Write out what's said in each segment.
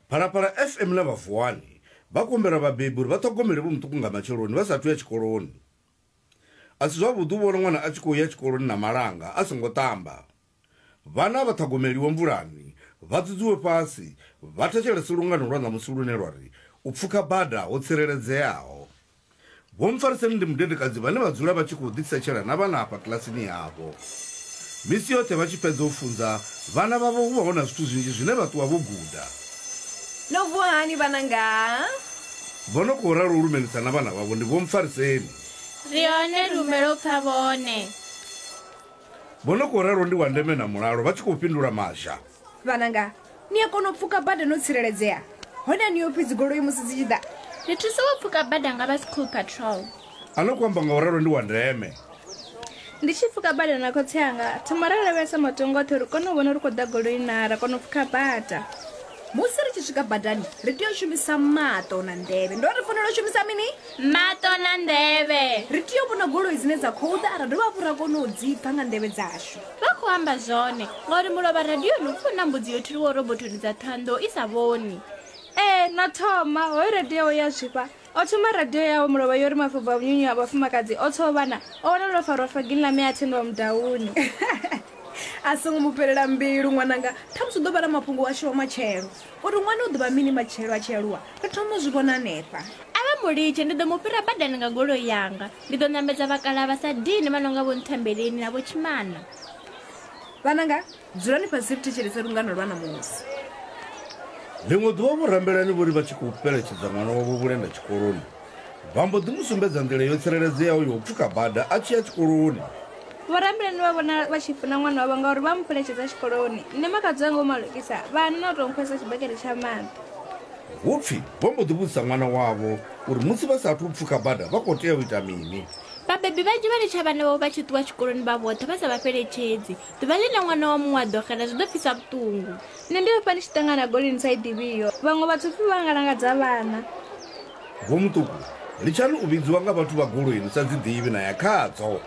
Phalaphala FM na vha Vuwani vha kumbela vhabebi uri vha ṱhogomele vho muṱuku nga matsheloni vha sa athu ya tshikoloni. A si zwavhuḓi u vhona ṅwana a tshi khou ya tshikoloni na malanga a songo ṱamba. Vhana vha ṱhogomeliwe mvulani, vha dzudzuwe fhasi, vha thetshelese lungano lwa ṋamusi lune lwa ri, U pfuka bada ho tsireledzeaho. Vho Mpfariseni ndi mudedekadzi vhane vha dzula vha tshi khou ḓitsetshela na vhana afha kilasini yavho. Misi yoṱhe vha tshi fhedza u funza vhana vhavho hu vha hu na zwithu zwinzhi zwine vha ṱuwa vho guda. No vuwa hani vhananga? Vho no khou ralo u lumelisa na vhana vhavho ndi Vho Mpfariseni. Ri hone ri humbela u pfa vhone. Vho no khou ralo ndi Wandeme na Mulalo vha tshi khou fhindula Mazha. vhananga ni a kona u pfuka bada no tsireledzea hone a ni yo pfi dzigoloi musi dzi tshi ḓa ri thusa u pfuka bada nga vha school patrol a no ku amba nga u ralo ndi wa ndeme ndi tshi pfuka bada na khotsi anga thoma ra lavhelesa matongo oṱhe uri kone u vhona ri khou ḓa goloi na ra kona u pfuka bada musi ri tshi swika badani ri tea u shumisa maṱo na nḓevhe ndo ri fanela u shumisa mini maṱo na nḓevhe ri tea u vhona goloi dzine dza khou ḓa ra dovha hafhu ra kona u dzi pfha nga nḓevhe dzashu Vha khou amba zwone, ngauri mulovha radioni u pfi hu na mbudzi yo thuliwaho robothoni dza Thohoyandou i sa vhoni. Ee, na thoma, hoyo radio yawe ya zwifha. O thoma radio yawe mulovha yo ri mafobvu a vhunyunyu ha vhafumakadzi o tswa o vhana, o wana lwo farwa fagini ḽa mme a thendiwa mudauni. A songo mu fhelela mbilu ṅwananga, ṱhamusi u ḓo vha na mafhungo washu wa matshelo. Uri ṅwana u ḓo vha mini matshelo a tshi aluwa, ri thoma u zwi vhona hanefha. A vha mu litshe, ndi ḓo mu fhira badani nga goloi yanga. Ndi ḓo ṋamedza vhakalaha vha sa dini vha no nga Vho Nthembeleni na Vho Tshimana. Vhananga, dzulani fhasi ri thetshelese lungano lwa ṋamusi. Ḽiṅwe ḓuvha vho Rambelani vho ri vha tshi khou fheletshedza ṅwana wavho Vhulenda tshikoloni, Vha mbo ḓi mu sumbedza nḓila yo tsireledzeaho ya u pfuka bada a tshi ya tshikoloni. Vhorambulani vha vhona vha tshi funa ṅwana wavho ngauri vha mu fheletshedza tshikoloni. Nṋe makhadzi wanga u malukisa, vha hana na u tou nkhwesa tshibakete tsha maḓi. Hu pfi vho mbo ḓi vhudzisa ṅwana wavho uri musi vha sa athu u pfuka bada vha khou tea u ita mini. Vhabebi vhanzhi vha litsha vhana vhavho vha tshi ṱuwa tshikoloni vha vhoṱhe vha sa vha fheletshedzi. Ḓuvha ḽine ṅwana wa muṅwe a ḓo xela zwi ḓo pfisa vhuṱungu. Nṋe ndi hafha ndi tshi ṱangana na goli ni sa i ḓivhiho. Vhaṅwe vhadzupfi vha nga langadza vhana. Vho Muṱuku, litshani u vhidziwa nga vhathu vha goloi ni sa dzi ḓivhi na ya khadzo.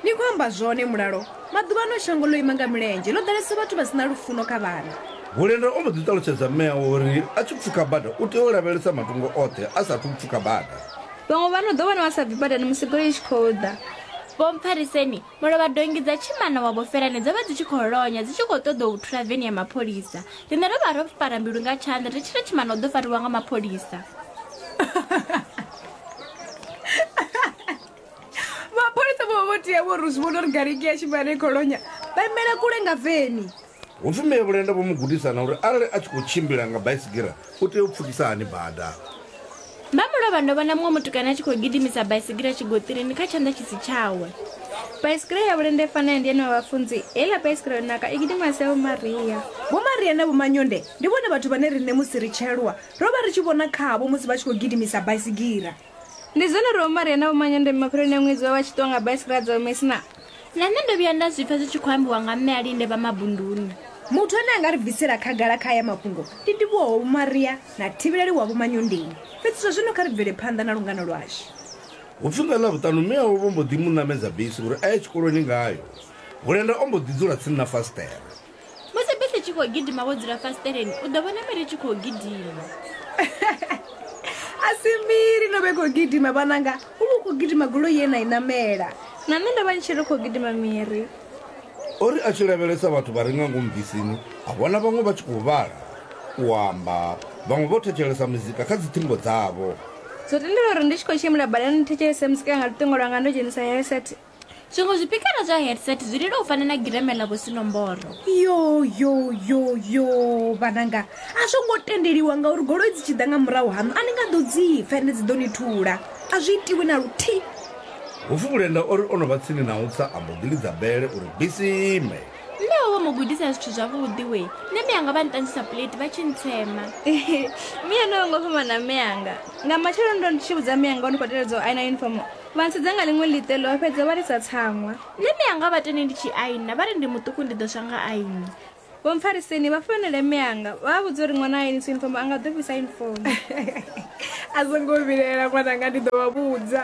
Ni khou amba zwone Mulalo, maḓuvhano shango ḽo ima nga milenzhe, ḽo ḓalesa vhathu vha si na lufuno kha vhana. Bulenda o mbo ḓi ṱalutshedza mme awe uri a tshi pfuka bada u tea u lavhelesa matungo oṱhe a sa athu u pfuka bada. Vhaṅwe vha no ḓo vhona vha sa bvi badani musi goloi i tshi khou ḓa. Vho Mphariseni Mulovha donngi dza tshimana wa Vhofelane dzo vha dzi tshi khou lonya dzi tshi khou ṱoḓou thula veni ya mapholisa. Riṋe ro vha ro fara mbilu nga tshanḓa ri tshi ri tshimana u ḓo fariwa nga mapholisa. Mapholisa vho vha vho tea vho ri zwi vhona uri gariki ya tshimana i khou lonya vha imele kule nga veni. Hu pfi Mme Vhulenda vho mu gudisa na uri arali a tshi khou tshimbila nga baisigira u tea u pfukisa hani bada. Vha mu lovha ndo vhona muṅwe mutukana a tshi khou gidimisa baisigira tshigoṱirini kha tshanḓa tshi si tshawe. Baisigira ya Vhulenda i fa na ya Ndiani wa Vhafunzi, heiḽa baisigira yo naka i gidimiwa a si ya Vho Maria. Vho Maria na Vho Manyonde ndi vhone vhathu vhane riṋe musi ri tshi aluwa ro vha ri tshi vhona khavho musi vha tshi khou gidimisa baisigira. Ndi zwenezwo Vho Maria na Vho Manyandeme mafheloni a ṅwedzi vha vha tshi ṱuwa nga baisigira dza Umesi na. Na nṋe ndo vhuya nda zwi pfa zwi tshi khou ambiwa nga Mme Alinde vha Mabunduni. Muthu ane a nga ri bvisela khagala kha aya mafhungo ndi Ndivhuwo wa Vho Maria na Thivheleli wa Vho Manyondeni. Fhedzi zwa zwino kha ri bvele phanḓa na lungano lwashu. Hu pfi nga Ḽavhuṱanu mme awe vho mbo ḓi mu ṋamedza bisi uri a ye tshikoloni ngayo. Hulenda o mbo ḓi dzula tsini na fasiṱere. musi bisi tshi khou gidima wo dzula fasiteleni u ḓo vhona miri tshi khou gidima a si miri no vhe khou gidima vhananga u vha u khou gidima gulo ye na i namela na nṋe ndo vha ni tshi ri khou gidima miri o ri a tshi lavhelesa vhathu vha re nga ngomu bisini a vhona vhaṅwe vha tshi khou vhala u amba vhaṅwe vho thetshelesa muzika kha dziṱhingo dzavho zwo tendela uri ndi tshi khou tshimbila badani ndi thetshelese muzika nga luṱingo lwanga ndo dzhenisa heset zwiṅwe zwipikara zwa headset zwi lila u fana na gireme ḽa vhusinomboro yo yo yo yo vhananga a zwo ngo tendeliwa ngauri goloi dzi tshi ḓa nga murahu haṋu a ni nga ḓo dzi pfa ende dzi ḓo ni thula a zwi itiwi na luthihi hupfi vhulenda o ri o no vha tsini na u tsa a mbo ḓi lidza bele uri bisi ime mme ho vho mu gudisa zwithu zwavhuḓi we nṋe mme anga vha nṱanzisa puleti vha tshi ntsema miya no yo ngo fhambana mme anga nga matsheloni ndo ndi tshi vhudza mme anga o ni khou teledza u aina uniform Vha ntsudza nga ḽiṅwe ḽiṱelo, vha fhedza vha lisa tsaṅwa. Nṋe mianga vha tende ndi tshi aina, vha ri ndi muṱuku ndi ḓo swa nga aini. Vho mpfariseni vha founele mianga, vha vha vhudza uri ṅwana a ainisa yunifomo a nga ḓo fhisa yunifomo. A songo vhilaela ṅwananga, ndi ḓo vha vhudza.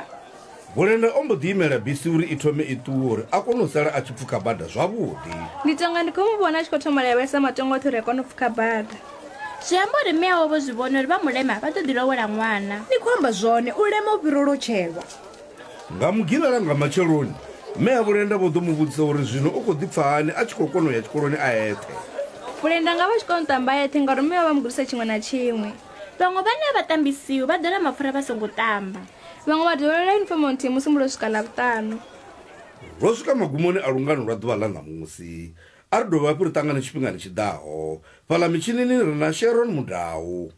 Gulenda o mbo ḓi imela bisi uri i thome i ṱuwe uri a kone u sala a tshi pfuka bada zwavhuḓi. Ndi tonga ndi khou mu vhona a tshi khou thoma lavhelesa matongo oṱhe uri a kone u pfuka bada. Zwi amba uri mme awe vho zwi vhona uri vha mulema vha ḓo ḓi lowela ṅwana. Ni khou amba zwone, u lema u fhira u lotshelwa. Nga Mugivhela nga matsheloni, mme a Vhulenda vho ḓo mu vhudzisa uri zwino u khou ḓi pfa hani a tshi khou kona u ya tshikoloni a eṱhe. Vhulenda nga vha tshi kona u ṱamba a eṱhe ngauri mme vha vha mu gudisa tshiṅwe na tshiṅwe. Vhaṅwe vhane a vha ṱambi siho vha ḓola mapfura vha songo ṱamba. Vhaṅwe vha dovholola yunifomo nthihi musi musi lwo swika Ḽavhuṱanu. Lwo swika magumoni a lungano lwa ḓuvha ḽa ṋamusi. A ri dovhe hafhu ri ṱangane tshifhingani tshi ḓaho. Fhaḽa mitshinini ri na Sharon Mudau.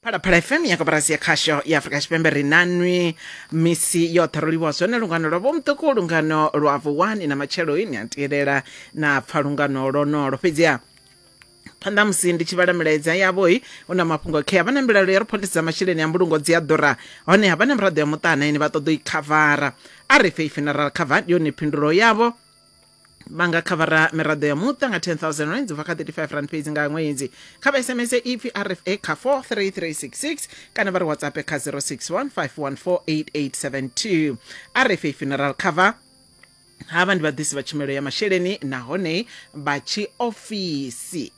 phalaphala fm ya koporasi ya khasho ya afurika tshipembe ri nanwi misi yoṱhe ro livhuwa zwone lungano lwa vhomuṱuku lungano lwa vuwani na matshelo ini a tielela na pfa lungano lonolo fhedziha phanḓa ha musi ndi tshi vhala milaedza yavho-i hu na mafhungo khe vha na mbilaelo ya ri phoḽisi dza masheleni a mbulungo dzi a ḓura honeha vha na miraḓo ya muṱa na ine vha ṱoḓa u i khavara a ri fhe i funeral cover ndi yone phindulo yavho vha nga khavara miraḓo ya muṱa nga 10000 rands ubva kha 35 rand fhedzi nga ṅwedzi kha vha sms ipfi rfa kha 43366 kana vha ri whatsapp kha 061 514 8872 rfa funeral cover Havha ndi vhaḓisi vha tshumelo ya masheleni nahone vha tshiofisi.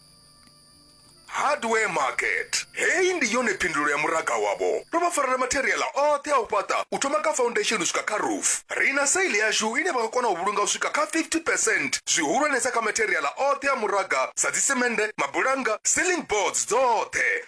Hardware Market. Heyi ndi yone phindulo ya muraga wavho. Ro vha farela matheriaḽa oṱhe a u fhaṱa u thoma kha faundesheni u swika kha roof. Ri na sale yashu ine vha nga kona u vhulunga u swika kha 50 percent zwihulwanesa kha matheriaḽa oṱhe a muraga sa dzisemennde, mabulannga, ceiling boards dzoṱhe.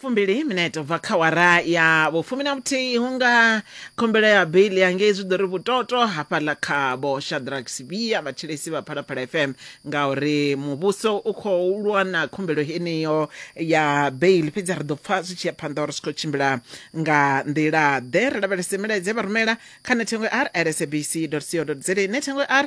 fumbili minete ubva kha wara ya vhufumi na vhuthihi hu nga khumbelo ya bili ya ngei zwi ḓo ri vhutoto hafhaḽa kha vho shadrack sibia vhatshilesi vha phalaphala fm ngauri muvhuso u khou lwa na khumbelo heneyo ya bail fhedzi ri ḓo pfa zwi tshi ya phanḓa uri zwi khou tshimbila nga nḓila ḓe ri lavhelese milaedza ye vha rumela kha nethengo r rsabc co za nethengo r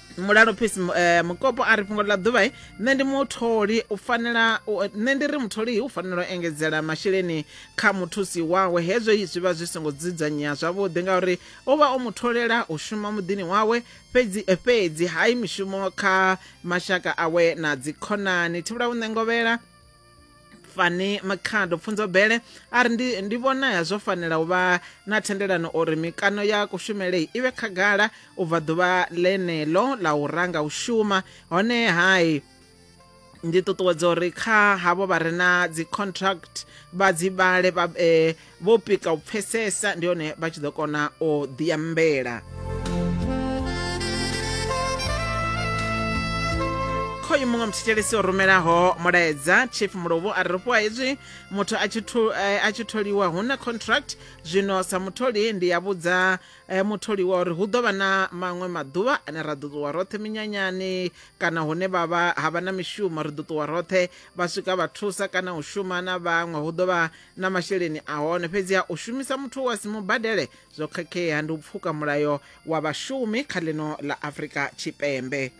mulalo peace eh, mukopo a ri fhungo ḽa ḓuvha eh, nṋe ndi mutholi u fanela nṋe ndi ri mutholi u fanela u engedzela masheleni kha muthusi wawe hezwo zwi vha zwi songo dzudzanyea zwavhuḓi ngauri u vha o mutholela u shuma muḓini wawe fhedzi eh, fhedzi hai mishumo kha mashaka awe na dzikhonani thivhula u ṋengovhela fani makhado pfunzo bele a ri ndi, ndi vhonaya zwo fanela u vha na thendelano uri mikano ya kushumele i vhe khagala u bva ḓuvha ḽeneḽo ḽa u ranga u shuma hone hai ndi ṱuṱuwedza uri kha havho vha re na dzi contract vha dzi vhale vha eh, vho pika u pfesesa ndi hone vha tshi ḓo kona u ḓiambela khoyu muṅwe muthetshelesi o rumelaho mulaedza chief mulovhu a ri fhiwa hezwi muthu a tshi eh, tholiwa hu na contract zwino sa mutholi ndi ya vhudza eh, mutholiwa uri hu ḓo vha na maṅwe maḓuvha ane ra ḓo ṱuwa roṱhe minyanyani kana hune vhavha ha vha na mishumo ri ḓo ṱuwa roṱhe vha swika vha thusa kana u shuma na vhaṅwe hu ḓo vha na masheleni a hone fhedziha u shumisa muthu wa si mu badele zwo khakhea ndi u pfuka mulayo wa vhashumi kha ḽino ḽa afrika tshipembe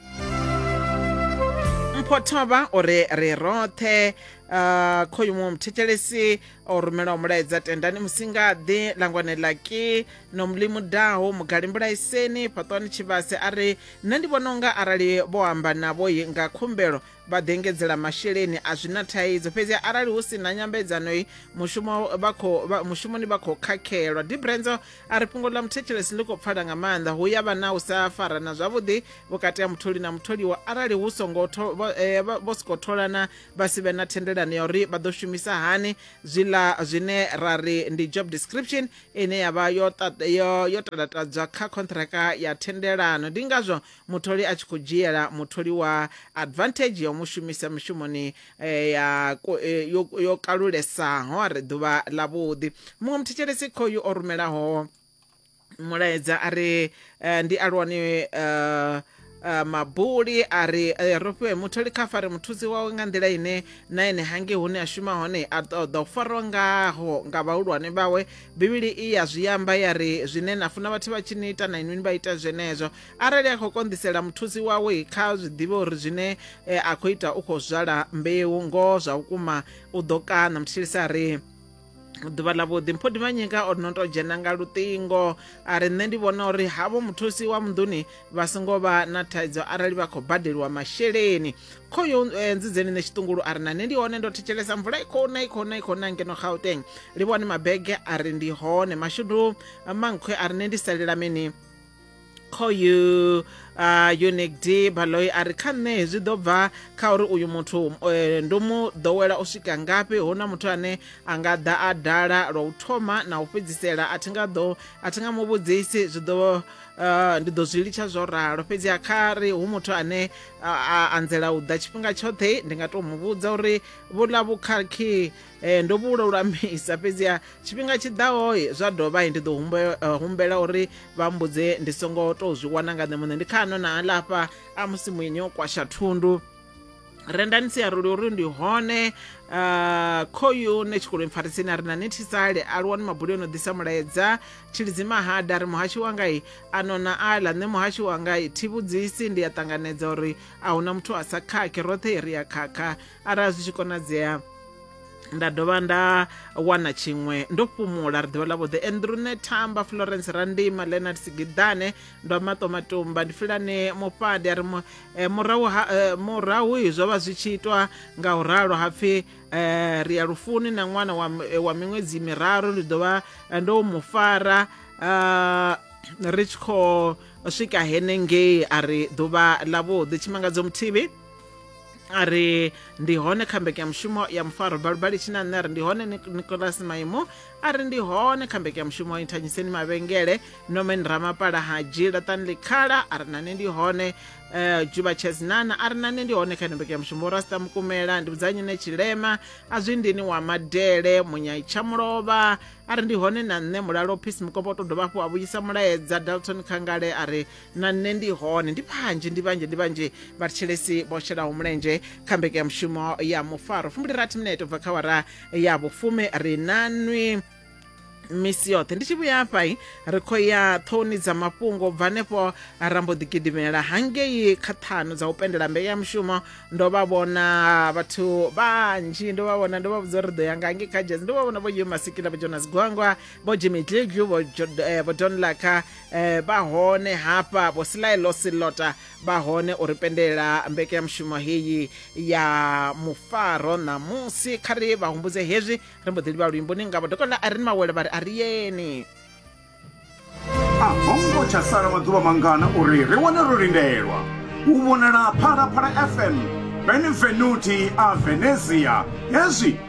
mpho thovha o re ri roṱhe uh, khoyu muṅwe muthetshelesi o rumelaho mulaedza tendani musingaḓi langwane laki no mulimu daho mugali mbulaiseni fhaṱwani tshivhase a ri nṋe ndi vhona unga arali vho amba navho yi nga khumbelo vha ḓo engedzela masheleni a zwi na thaidzo fhedzi arali hu si na nyambedzano i mushumo vha khou vha- mushumoni vha khou khakhelwa dibrenzo a ri fhungo ḽa muthetshelesi ḽi khou pfala nga maanḓa hu ya vha na u sa farana zwavhuḓi vhukati ha mutholi na mutholiwa arali hu songo tho- vho- eh, vha- vho sokou tholana vha si vhe na thendelano ya uri vha ḓo shumisa hani zwiḽa zwine ra ri ndi job description ine ya vha yo ta- yo- yo talatadzwa kha khontraka ya thendelano ndi ngazwo mutholi a tshi khou dzhiela mutholiwa advantage ya u mu shumisa mishumoni eh, ya ko- eh, yo yo kalulesaho a ri ḓuvha ḽavhuḓi muṅwe muthetshelesi khoyu o rumelaho mulaedza a ri eh, ndi alwani eh, eh, mabuli a ri eh, ro fhiwe mutholi kha fare muthusi wawe nga nḓila ine na ene hange hune a shuma hone a ṱoḓa u farwa ngaho nga vhahulwane vhawe bivhili i ya zwi amba ya ri zwine na funa vhathu vha tshi ni ita na inwi ni vha ita zwenezwo arali a khou konḓisela muthusi wawe kha zwi ḓivhe uri zwine eh, a khou ita u khou zwala mbeu ngoho zwa vhukuma u ḓo kana mutshilisa a ri ḓuvha ḽa vhuḓi mpho divhanyika o no to dzhena nga luṱingo a ri nṋe ndi vhona uri havho muthusi wa munḓuni vha songo vha na thaidzo arali vha khou badeliwa masheleni kho yo eh, nzidzeni nṋe tshiṱungulu a ri na nṋe ndi hone ndo thetshelesa mvula i khou na i khou na i khou na ngeno gauteng li vhone mabege a ri ndi hone mashudu mankhwe a ri nṋe ndi salela mini khoyu uh, unic d baloyi a ri kha nṋe zwi ḓo bva kha uri uyu muthu eh, ndo mu ḓowela u swika ngafhi hu na muthu ane a nga ḓa a dala lwa u thoma na u fhedzisela a thi nga ḓo a thi nga mu vhudzisi zwi ḓo uh, ndi ḓo zwi litsha zwo ralo fhedzi a kha ri hu muthu ane a anzela u ḓa tshifhinga tshoṱhe ndi nga tou mu vhudza uri vhuḽa vhukhakhi um ndo vhu lulamisa fhedziha tshifhinga tshi ḓaho zwa dovha ndi ḓo eh, humbela uri vha mbudze ndi songo tou zwi wana nga nṋe muṋe ndi khano na alafha a musi muini o kwasha thundu rendani siaruli uri ndi hone uh, khoyu ne tshikoloni pfarisini a ri na nethisale a luwani mabuli ono ḓisa mulaedza tshilidzi mahada ri muhashi wangai a nona ala nṋe muhashi wangai thi vhudzisi ndi a ṱanganedza uri a huna muthu a sa khakhe roṱhe ri a khakha arali zwi tshi konadzea nda dovha nda wana tshiṅwe ndo fhumula ri ḓivha ḽavhuḓi andrune thamba florence randima leonard sigidane ndo maṱo matumba ndi filane mufhadi a ri mu- eh, murahu ha- eh, murahu i zwo vha zwi tshi itwa nga u ralo ha pfhi eh, ri ya lufuni na ṅwana wa m- eh, wa miṅwedzi miraru ndi ḓo vha eh, ndo mu fara ah, ri tshi khou swika henengei a ri ḓuvha ḽavhuḓi tshimangadzo muthivi a ri ndi hone kha mbekanyamushumo ya mufaro balubali tshina nṋe ri ndi hone nicolas maimo a ri ndi hone kha mbekanyamushumo inthanyiseni mavhengele nomen ramapala ha dzhila tanley khala a ri nane ndi hone uh, juba chesinana a ri nane ndi hone kha ino mbekanyamushumo rasta mukumela ndi vhudzanyine tshilema a zwi ndini wa madele munyai tshamulova a ri ndi hone na nṋe mulalo phisi mukombo to dovha hafhu a vhuyisa mulaedza dalton khangale a ri na nṋe ndi hone ndi vhanzhi ndi vhanzhi ndi vhanzhi vhathetshelesi vho shelaho mulenzhe kha mbekanyamushumo ya mufaro fumbili rathi minete ubva kha wara ya vhufumi ri nanwi misi yoṱhe ndi tshi vhuya hafhai ri khou ya ṱhouni dza mafhungo bva hanefho ra mbo ḓi gidimela hangei kha ṱhanu dza u pendela mbeu ya mushumo ndo vha vhona vhathu vhanzhi ndo vha vhona ndo vha vhudza uri ri ḓo ya nga hangei kha jaz ndo vha vhona vho yo masikila vho jonas gwangwa vho jimmy dliglu vho eh, don laka eh vha hone hafha vho silaelo silota vha hone u ri pendelela mbekanyamushumo heyi ya mufaro ṋamusi kha ri vha humbudze hezwi ri mbo ḓi livha luimboni ngavho dokotela a ri ni mawele vha ri a ri yeni a hongo tsha sala maḓuvha mangana uri ri wane ro lindelwa u vhonala phalaphala fm benevenuti a venezia hezwi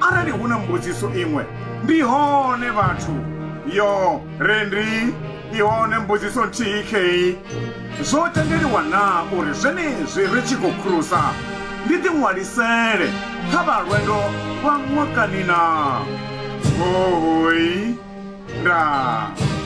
Arali hu na mbudziso iṅwe, ndi hone vhathu. Yo, re ndi, i hone mbudziso nthihi khei. Zwo tendeliwa naa uri zwenezwi ri tshi khou khurusa, ndi ḓiṅwalisele kha vha lwendo lwa ṅwakani naa? Hohoi. Nda.